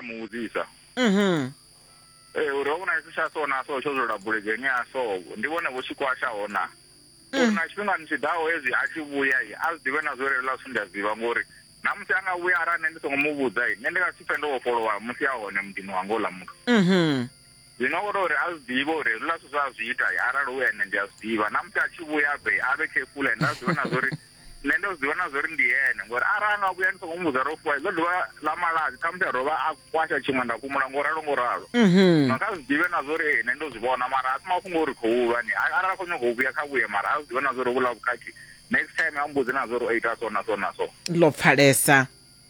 muvhudzisa Mhm. ee uri ho vhona tshi tsha so na so tsho dzula buledzheni ya so ndi vhone vho tshikwasha hona uri na tshifhingani tshi ḓaho hezwi a tshi vhuya i a zwi ḓivhe na zwo relela zwithu ndi a zwi ḓivha ngori na musi a nga vhuya arali nṋe ndi songo mu vhudza i nṋe ndi nga si pfe ndo vhofholowa musi a hone muḓini wanga uḽa muthu Mhm. Zwino o tou ri a zwi ḓivhe uri hezwiḽa zwithu zwa a zwi ita arali hu ene ndi a zwi ḓivha na musi a tshi vhuya a bve a vhe khefula ende a zwi ḓivhe na zwa uri nṋe ndo zwi ḓivha na zwa uri ndi ene ngori arali a nga vhuya ndi songo mu vhudza ro fuwa ḽo dovha ḽa malazi khamusi a dovha a kwasha tshiṅwe nda fhumula ngo ralo ngo ralo no kha zwi ḓivhe na zwa uri ee nṋe ndo zwi vhona mara a si mafhungo uri khou ulwa ni arali a khou nyanga u vhuya kha vhuye mara a zwi ḓivhe na zwa uri vhula vhukhakhi next time a mbudze na zwa uri o ita so na so na so ḽo pfalesa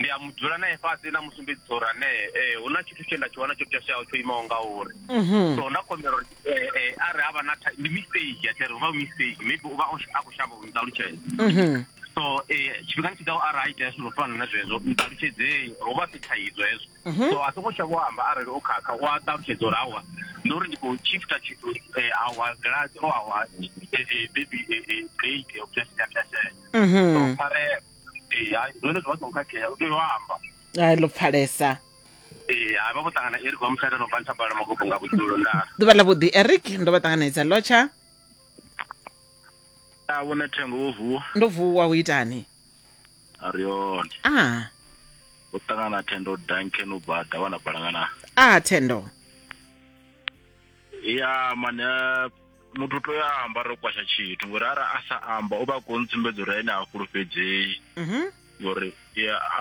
ndi a mu dzula nae fhasi na musumbedzi tsho uri anee ee hu na tshithu tshe nda tshi wana tsho pwashaho tsho imaho nga uri mhm. so nda khombela uri ee eh, a re havha na ndi mistake a tshiri uvha mistake maybe uvha a khou shavha u nṱalutshela mhm. so ee eh, tshifhingani tshi ḓaho arali a itea zwithu zwo fana na zwezwo nṱalutshedzei ho vha si thaidzo hezwo mhm. so a songo tsha vho amba arali o khakha u a ṱalutshedza uri awa ndi uri ndi khou chifta tshithu awa gilasi o awa bebi date o pwashaho so pharela ee hai zwone zwi vha songo khakhea u tea u amba ai ḽo pfalesa ee hai vha vho ṱangana eric wa mushada no bva nthabala magogo nga vhudzulo ndaa ḓuvha ḽa vhuḓi eric ndo vha ṱanganedza lotsha a vhona thengo wo vuwa ndo vuwa u itani a ri hone a u ṱangana thendo duncan u bva davha na balangana a thendo ya mane muthu u tea a amba ro kwasha tshithu ngori ara a sa amba u vha khou ntsumbedza uri ene a fhulufhedzei mhm. ngori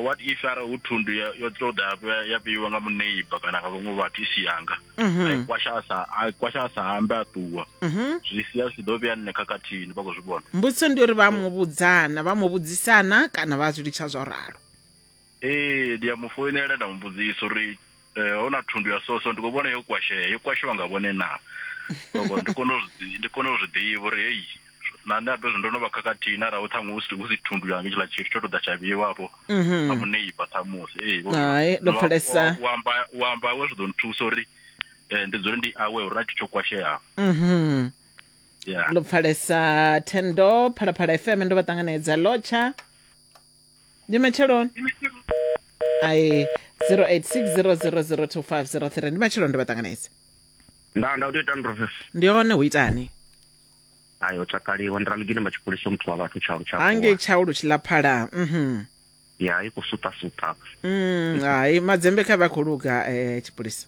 what if ara hu thundu yo tou ḓa ya vheiwa nga muneiba kana nga vhaṅwe vhathu i si yanga mhm. a kwasha a sa a kwasha a sa ambe a ṱuwa mhm. zwi sia zwi ḓo vhea nṋe khakhathini vha khou zwi vhona mbudziso ndi uri vha mu vhudzana vha mu vhudzisana kana vha zwi litsha zwo ralo ee ndi a mu foinela nda mu mbudzisa uri eh, ho na thundu ya soso ndi khou vhona yo kwashea yo kwashiwa nga vhone na Ngoho, ndi kone u zwi- ndi kone u zwi ḓivha uri heyi na nṋe ato zwi ndo no vha khakhathini arali ṱhaṅwe hu si- hu si thundu yanga tshiḽa tshithu tsho to ḓa tsha vheiwa afho a muneiba ṱhamusi ee vho- Hai, ndo wa- pfalesa. wa- wa amba- wa amba awe zwi ḓo nthusa uri eh, ndi dzule ndi awe uri na tshithu tsho kwasheaho mhm ya ḽo pfalesa thendo phalaphala fm ndo vha ṱanganedza lotsha ndi matsheloni ai 0860002503 ndi matsheloni ndi vhaṱanganedzi nda nda u tea u ita ndrofes ndi hone hu itani ayo tsakaliwa ndi ralugini matshipholisa muthu wa vhathu tshaulu tsha hange tshau lu tshi ḽa phala mhm ya i khou suṱasuṱa Mm, hai madzembe kha vha khou luga eh, tshipholisa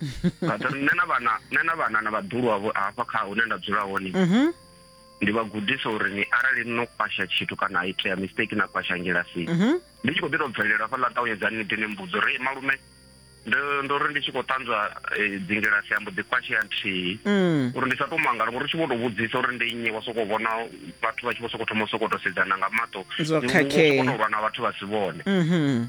nṋe na vhana nṋe na vhana na vhaḓulu wavho hafha kha hune nda dzula hone mhm. ndi vha gudisa uri ni arali no kwasha tshithu kana itea mistake na kwasha ngilasini mhm. ndi tshi khou ḓi tou bvelela hafha ḽa ṱawunyedzani ni ḓi ni mbudzo uri malume ndo ri ndi tshi khou ṱanzwa e, dzingilasi ambo ḓi kwashea nthihi mm. uri ndi sa to mangala ngori u tshi vho to vhudzisa uri ndi nnyi wa sokou vhona vhathu vha tshi vho sokou thoma u sokou to sedzana nga maṱo zwo khakhea lwa na vhathu vha si vhone mhm.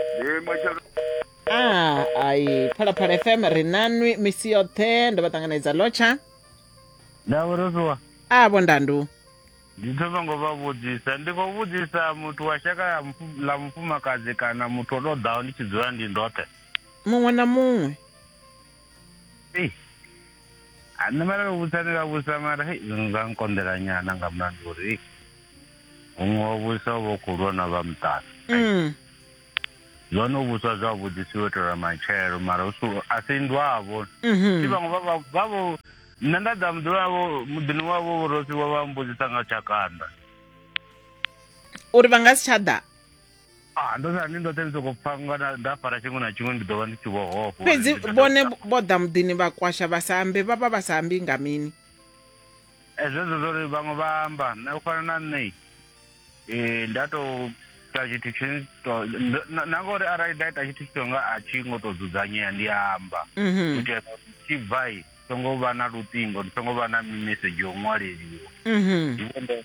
Ee, mashaka a ai phalaphala fm ri nanwi misi yoṱhe ndo vha ṱanganedza lotsha ndavho ro ṱuwa a vhondandu ndi to songo vha vhudzisa ndi khou vhudzisa muthu wa shaka ya mufu- ḽa mufumakadzi kana muthu o tou ḓaho ndi tshi dzula ndi ndoṱhe muṅwe na muṅwe Ei, a nṋe mara vha vhusa ni vha vhusa mara hei zwi nga nkonḓela nyana nga mulandu uri huṅwe wa vhusa u vha u khou lwa na vha muṱana Mm. zwone u vhuswa zwavhuḓi si u itela matshelo mara hu si u- a si ndwavho si Mhm. vhaṅwe vha vha- vha vho nṋe nda ḓa muḓini wavho muḓini wavho vhorosi wa vha mbudzisa nga tshakanda Uri vha nga si tsha ḓa. Ah, ndo sani ndoṱhe ndi sokou pfa nga na- nda fara tshiṅwe na tshiṅwe ndi ḓo vha ndi tshi vho hofha uri fhedzi ndi ḓo vhone ita. vho ḓa muḓini vha kwasha vha sa ambe vha vha vha sa ambi nga mini Eh, zwezwo zwo ri vhaṅwe vha amba na u fana na nṋe eh, nda tou ita tshithu tshine to- ndo- na na ngauri arali nda ita tshithu tshito nga a tshi ngo tou dzudzanyea ndi amba u Mhm, itela uri ndi tshi bvai songo vha na luṱingo ndi songo vha na mimesedzhi yo ṅwaleliwa mhm. Ndi vhone-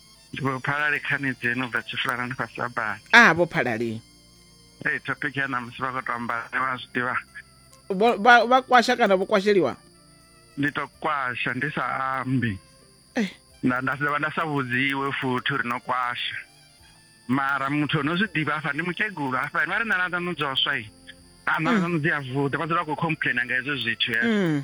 Ndi vho phalale khani dzenu bva tshifulana ndi fhasi abana. a vho phalali Hey, topic ya ṋamusi vha khou tou amba ne vha zwi ḓivha. Vho- vha vha kwasha kana vho kwasheliwa Ndi tou kwasha ndi sa ambi. Eh. Nda nda dovha nda sa vhudziwe futhi uri no kwasha. Mara muthu ono zwi ḓivha hafha ndi mukegulu hafha vha ri nana dzanu dzoswa i. Ana dzanu dzi a vuḓa vha dzula vha khou complainer nga hezwo zwithu. eh. Mm.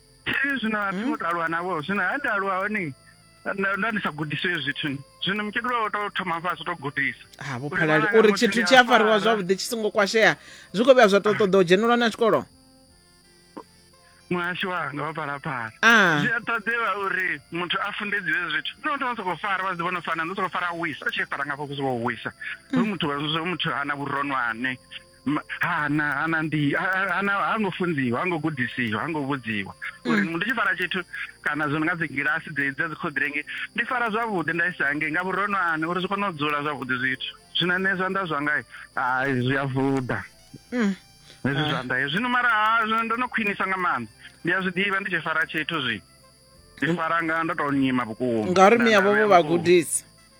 Thi zwino a thi ngo to aluwa navho zwino ha nda aluwa hone nda nda ndi sa gudiswe zwithu ni. zwino mukegulu wawe to thoma fhasi to gudisa ha vho Uri phalali ṅwananga uri muthu tshithu ndi tshi a fariwa fara. zwavhuḓi tshi songo kwashea zwi khou vhuya zwa tou ṱoḓa u dzhenelwa na tshikolo muhasho wanga wa phalaphala Ah. zwi a ṱoḓewa uri muthu a fundedziwe zwithu no ndo soko fara vha zwi vhona fana ndo soko fara a wisa a tshi fara ngafho kusi vho wisa hu muthu wa zwo muthu ana vhuronwane Ma- hana hana ndi ha- ha- hana ha ngo funziwa ha ngo gudisiwa ha ngo vhudziwa uri Mm. ndi tshi fara tshithu kana zwo no nga dzigilasi dzedzi dza dzikhoḓirengi ndi fara zwavhuḓi nda isa hangei nga vhurono ani uri zwi kone u dzula zwavhuḓi zwithu zwino nṋe zwanḓa zwanga hai zwi a vuḓa Mm. hezwi Ah. zwanḓa hezwi zwino mara ha zwino ndo no khwinisa nga maanḓa ndi a zwi ḓivha ndi tshi fara tshithu zwi ndi fara nga ndo to nyima vhukuma ngauri Nda- miavho nda vho vhea vha vhukuma. gudisa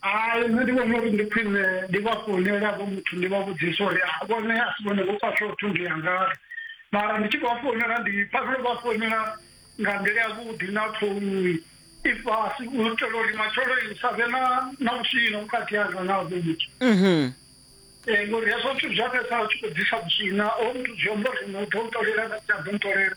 Hai nṋe ndi vhona uri ndi khwine ndi vha founele havho muthu ndi vha vhudzisa uri a vhone a si vhone vho khwaṱha u thundu ya ngari mara ndi tshi khou vha founela ndi pfa ndo vha founela nga nḓila ya vhuḓi na ṱhouni i fhasi u itela uri matshelo i sa vhe na na vhuswina vhukati hanga na havho muthu ngori hezwo zwithu zwi a fhedzisela zwi tshi khou ḓisa vhuswina hoyu muthu zwi amba uri na u ḓo ntolela na u sa ḓo ntolela.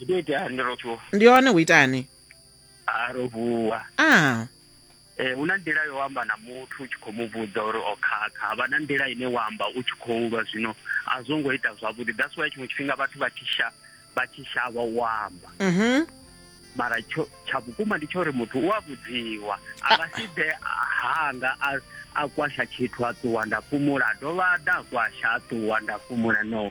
Ndi ḓo ita hani ro vuwa? ndi hone hu itani A ro vuwa. a Eh hu na nḓila yo amba na muthu u tshi khou mu vhudza uri o khakha. Havha na nḓila ine wa amba u tshi khou lwa zwino a zwo ngo ita zwavhuḓi. That's why tshiṅwe tshifhinga vhathu vha tshi sha vha tshi shavha u amba. mhm mara tsho tsha vhukuma ndi tsho uri muthu u a vhudziwa a nga si ḓe hanga a a kwasha tshithu a ṱuwa nda fhumula a dovha a ḓa a kwasha a ṱuwa nda fhumula no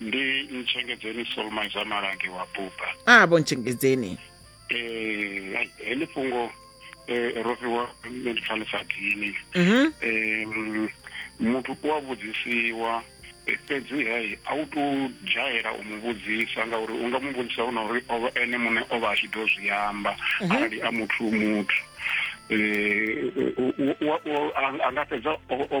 ndi ntshengedzeni solmaiza malange wa buba a vho ntshengedzeni um heḽi fhungo um ro fhiwa nṋe ndi pfa ḽi sa dini mhm um muthu u a vhudzisiwa eh, fhedzi hei a u to dzhayela u mu vhudzisa ngauri u nga mu vhudzisa hu na uri o vha- ene muṋe o vha a tshi ḓo zwi amba arali a muthu muthu um u- u- u- u- a- a nga fhedza o- o